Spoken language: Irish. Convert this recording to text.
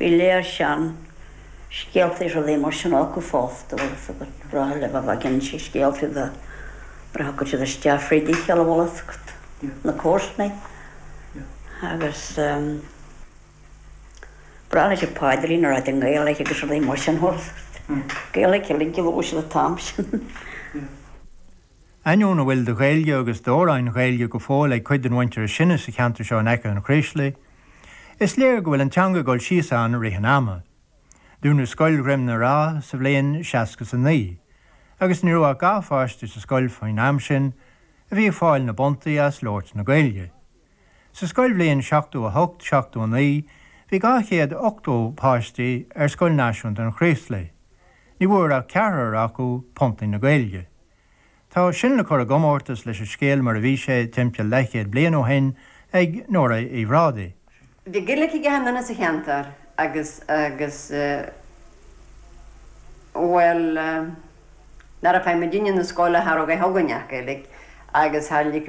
Bhí lear sean scéalta is rudaí mar sin acu fosta bhfuil a fhios agat, ba ghnách leo a bheith ag inse scéaltaí nuair a thiocfadh siad isteach fríd a chéile, bhfuil a fhios agat, na comharsanaí agus ba ghnách leo an paidrín a ráit i nGaeilge agus rudaí mar sin fosta. Gaeilge uilig a labhair siad an t-am sin. Ainneoin a bhfuil de Ghaeilge agus d'amhráin Ghaeilge go fóill ag cuid den mhuintir is sine sa cheantar seo in aice an Chraoslaigh, is léir go bhfuil an teanga ag dul síos ann i rith an ama. Dúnadh scoil Dhroim na Rá sa bhliain seasca 's a naoi, agus ní raibh ach dhá pháiste sa scoil faoin am sin a bhí ag fáil na bpuntaí as labhairt na Gaeilge. Sa scoilbhliain 78, 79, bhí 280 páistí ar Scoil Náisiúnta an Chraoslaigh. Ní bhfuair ach ceathrar acu puntaí na Gaeilge. Tá sin le cur i gcomórtas leis an scéal mar a bhí sé timpeall leathchéad bliain ó shin ag Nóra Uí Bhrádaigh. Bhí Gaeilge ag achan duine sa cheantar agus, agus, bhuel, nuair a chuaigh muidinne na scoile cha raibh againn ach Gaeilge agus thar, like,